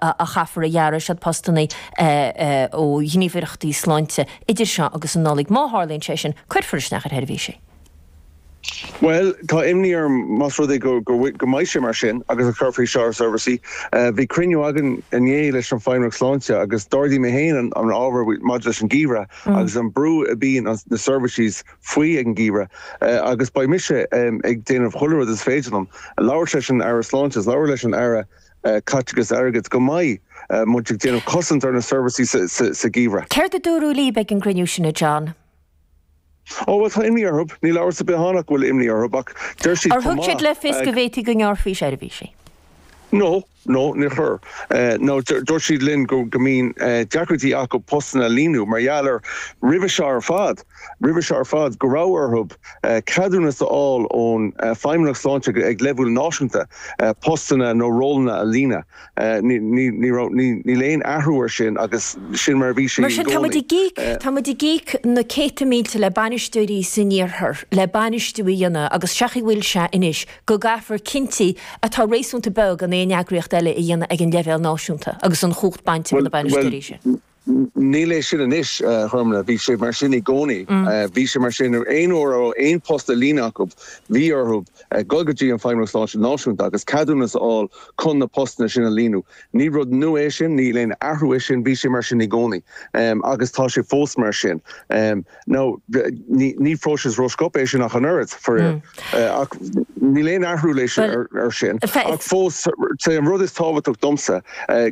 a chaithfear a ghearradh as na postanna ó ghníomhaireachtaí sláinte idir seo agus an Nollaig. Má tharlaíonn sé sin, cuirfear isteach ar sheirbhísí. Bhuel, tá imní orm más rud é go mbeidh sé mar sin agus a chuirfear isteach ar seirbhísí. Bhí cruinniú againn inné leis an Feidhmeannacht Sláinte agus d'ardaigh mé féin an ábhar maidir leis an geimhreadh agus an brú a bíonn na seirbhísí faoi ag an geimhreadh agus beidh mise ag déanamh chuile rud is féidir liom labhairt leis an Aire Sláinte, labhairt leis an Aire caiteachas airgid go mbeidh muid ag déanamh cosaint ar na seirbhísí sa gheimhreadh. Céard a dúradh líb ag an gcruinniú sin, a John? Ó, bhuel, tá imní orthu. Níl amhras ar bith ann ach go bhfuil imní orthu, ach deir siad. Ar thug siad le fios go bhféadfaí go ngearrfaí seirbhísí? No, no, níor chuir. No, dúirt siad linn go mbíonn deacrachtaí acu postanna a líonadh mar gheall air roimhe seo ar fad. roimhe seo ar fad go raibh orthu ceadúnas a fháil ón Feidhmeannacht Sláinte ag leibhéal náisiúnta postanna nó rólanna a líonadh. Níl aon athrú air sin agus sin mar a bhí sé i gcónaí. Mar sin, tá muid ag íoc, tá muid ag íoc na céadta mílte le bainisteoirí san iarthar le bainistiú a dhéanamh agus séard chaoi a bhfuil sé anois go gcaithfear cinntí atá réasúnta beag in aon eagraíocht eile a dhéanamh ag an leibhéal náisiúnta agus an chumhacht bainte de na bainisteoirí sin. Níl é sin anois, i ndomhnach, bhí sé mar sin i gcónaí. Bhí sé mar sin aon uair a raibh aon phost le líonadh acu, bhí orthu dul go dtí an Feidhmeannas Sláinte Náisiúnta agus ceadúnas a fháil chun na postanna sin a líonadh. Ní rud nua é sin, níl aon athrú air sin, bhí sé mar sin i gcónaí agus tá sé fós mar sin. Nó ní próiseas rósciobtha é sin ach an oiread, faraor. Ach níl aon athrú leis ar sin. Ach fós, sé an rud is tábhachtach domsa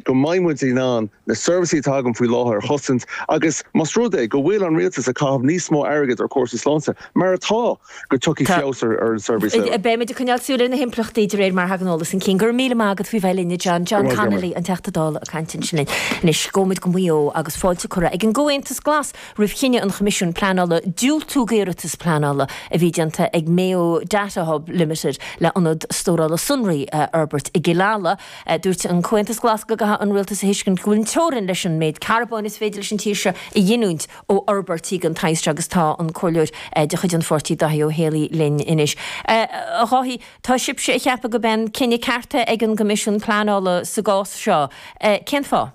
go mbeidh muid in ann na seirbhísí atá againn faoi láthair a chosaint agus más rud é go bhfuil an Rialtas ag caitheamh níos mó airgid ar chúrsaí sláinte, mar atá, go dtiocfaidh feabhas ar an tseirbhís. Beidh muid ag coinneáil súil ar na himpleachtaí de réir mar a thagann eolas chun cinn. Go raibh míle maith agat faoi bheith linn, a John. John Connolly, an Teachta Dála, ag caint ansin linn. Anois, gabhaimid go Maigh Eo agus fáilte curtha ag an gComhaontas Glas, roimh chinneadh an Choimisiúin Pleanála diúltú d'iarratas pleanála a bhí déanta ag Mayo Data Hub Limited le ionad stórála sonraí a fhorbairt i gCill Ala, dúirt an Comhaontas Glas go gcaithfeadh an Rialtas a thuiscint go bhfuil teorainn leis an méid carbóin is féidir leis an tír seo a ghiniúint ó fhorbairtí den tsaghas seo agus tá an Comhairleoir de chuid an pháirtí Dáithí Ó Héalaí linn anois. A Dháithí, tá sibhse ag ceapadh gob é an cinneadh ceart ag an gCoimisiún Pleanála sa gcás seo. Cén fáth?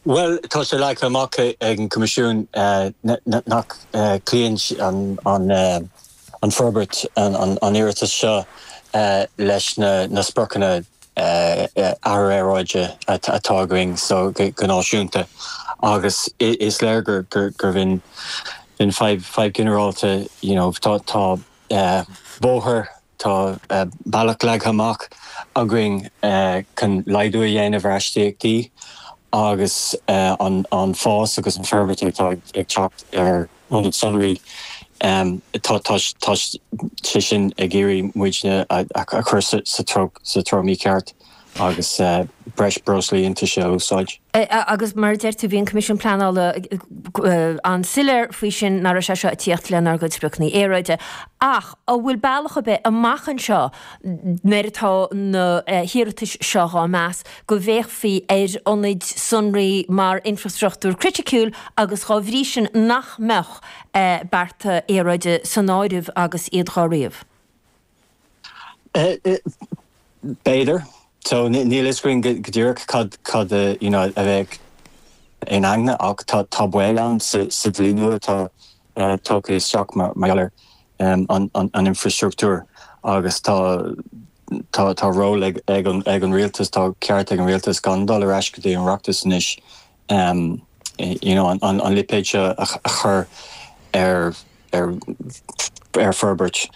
Bhuel, tá sé leagtha amach ag an gCoimisiún nach gcloíonn an fhorbairt, an iarratas seo, leis na spriocanna aeráide atá againn go náisiúnta agus is léir gurb in fadhb ginearálta, you know, tá bóthar Tá bealach leagtha amach againn chun laghdú a dhéanamh ar astaíochtaí agus an fás agus an forbairt atá ag teacht ar ionaid sonraí, tá sé sin ag iarraidh muidne a chur sa treo mícheart. agus breis breoslaí iontaise a úsáid. Agus mar a deir tú, bhí an Coimisiún Pleanála an-soiléir faoi sin, nach raibh sé seo ag tíocht lenár gcuid spriocanna aeráide. Ach an bhfuil bealach ar bith amach anseo, nuair atá na hiarratais seo dhá meas, go bhféachfaí ar ionaid sonraí mar infreastruchtúr criticiúil agus dá bhrí sin nach mbeadh bearta aeráide san áireamh agus iad dhá ríomh? B'fhéidir so. Níl a fhios againn go díreach cad a bheadh in aigne ach tá baol ann sa dlí nua atá tugtha isteach mar gheall ar an infreastruchtúr agus tá ról ag an rialtas, tá ceart ag an rialtas gan dul ar ais go dtí an Oireachtas anois an lipéad seo a chur ar forbairt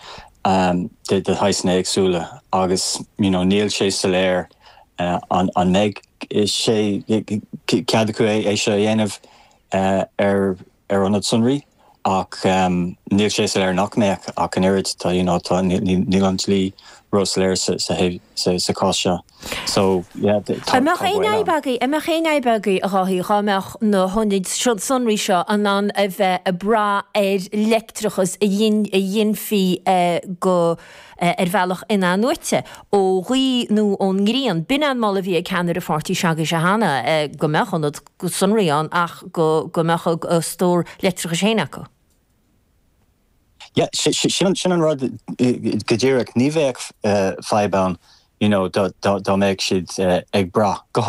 de shaghsanna éagsúla agus níl sé soiléir an mbeidh sé cead acu é seo a dhéanamh ar ar ionaid sonraí ach níl sé soiléir nach mbeadh ach an oiread. Níl an dlí ró-soiléir sa chás seo. So, yeah, tá baol ann. An mbeadh aon fhadhb agaibh, a Dháithí, dhá mbeadh na hionaid sonraí seo in ann a bheith ag brath ar leictreachas a ghinfí ar bhealach in-athnuaite, ó ghaoth nó ón ngrian? B'in an moladh a bhí ag ceannaire páirtí s'agaibhse cheana, go mbeadh ionaid sonraí ann ach go mbeadh a stór leictreachais féin acu. Yeah, sin an rud go díreach, ní bheadh fadhb ann, you know, dá mbeadh siad ag brath, go.